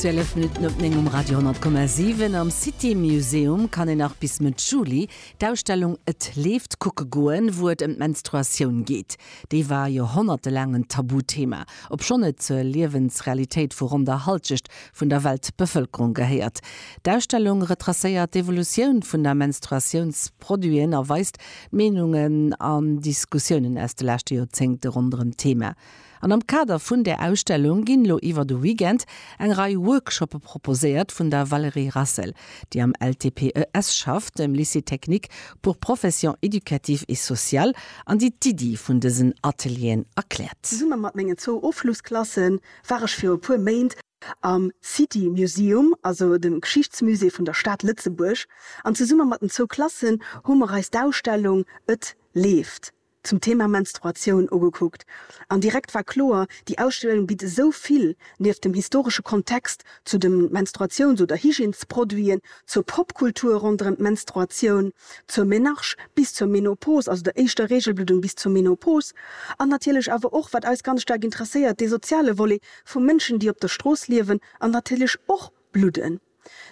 Zwielef Minutten op néng um Radio 10,7. Am City Museum kann een nach bis Mëtt Juli d'Ausstellung Et leeft kucke goen, wou et ëm d'Menstruatioun geet. Déi war joerhonnertelaang en Tabuthema, obschonn et zur Liewensrealitéit vu ronn der Hallschecht vun der Weltbevëlkerung gehéiert. D'Ausstellung retracéiert d'Evolutioun vun der Menstruatiounsproduiten a weist d'Meenungen an Diskussiounen aus de leschte Joerzéngte ronderëm d'Thema. An am Kader vun där Ausstellung ginn lo iwwer de Weekend eng Rei Workshoppe proposéiert vun der Valérie Rassel, déi am LTPES schafft, dem Lycée technique pour professions éducatives et sociales, an déi d'Iddi vun dësen Atelieren erkläert. Zesumme mat mengen zwou Ofschlussklasse war ech viru puer Méint am City Museum, also dem Geschichtsmusée vun der Stad Lëtzebuerg, an zesumme mat den zwou Klassen hu mer eis d'Ausstellung Et leeft! zum Thema Menstruatioun ugekuckt an direkt war kloer, déi Ausstellung bitt esou vill, nieft dem historesche Kontext zu de Menstruations oder Hygiènesproduiten, zur Popkultur ronderëm d'Menstruatioun, zur Menarche bis zur Menopos, also der éischter Reegelbluddung bis zur Menopos, an natierlech awer och, wat eis ganz staark interesséiert, dee soziale Volet vu Mënschen, déi op der Strooss liewen an natierlech och bludden.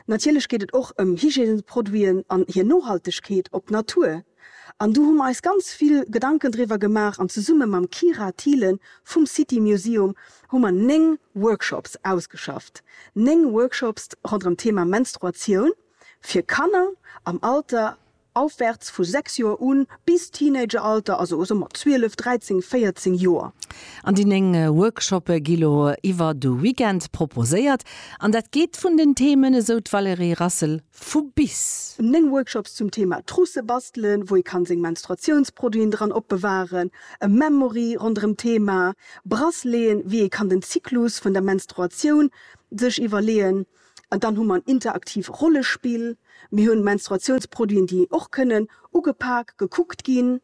Natierlech geet et och ëm Hygiènesproduiten an hir Nohaltegkeet op d'Natur. An do hu mer eis ganz vill Gedanken driwwer gemaach an zesumme mam Kyra Thielen vum City Museum hu mer néng Workshops ausgeschafft. Néng Workshops ronderëm d'Thema Menstruatioun fir Kanner am Alter Aufwärts vu 6 Joer un bis Teenageralter, also eso mat 12, 13, 14 Joer. An déi 9 Workshoppe gi lo iwwer de Weekend proposéiert an dat geet vun den Themen, esou d'Valérie Rassel vu bis. 9 Workshops zum Thema Trousse bastelen, wou ee kann seng Menstruatiounsproduiten dran opbewahren, e Memory ronderëm Thema Brasseleeën, wéi ee kann den Zyklus vun der Menstruatioun sech iwwerleeën, An dann hu mer en interaktiv Rollespill. Mir hunn Menstruatiounsproduiten, déi och kënnen ugepak, gekuckt ginn.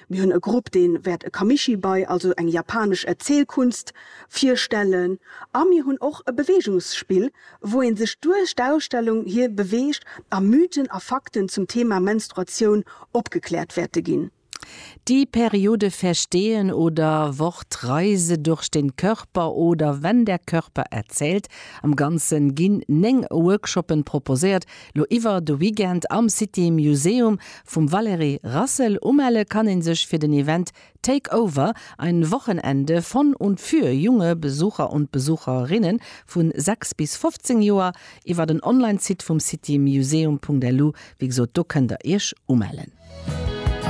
Mir hunn e Grupp, dee wäert e Kamishibai, also eng japanesch Erzielkunst, virstellen. A mir hunn och e Beweegungsspill, wou ee sech duerch d'Ausstellung hir beweegt a Mythen a Fakten zum Thema Menstruatioun opgekläert wäerte ginn. Die Periode Verstehen oder Wortreise durch den Körper oder Wenn der Körper erzählt. Am Ganze ginn 9 Workshoppen proposéiert, lo iwwer de Weekend am City Museum vum Valérie Rassel. Umelle kann een sech fir den Event Take Over, ein Wochenende von und für junge Besucher und Besucherinnen vu 6 bis 15 Joer, iwwer den Online-Site vum citymuseum.lu. Wéi gesot, do kënnt der iech umellen.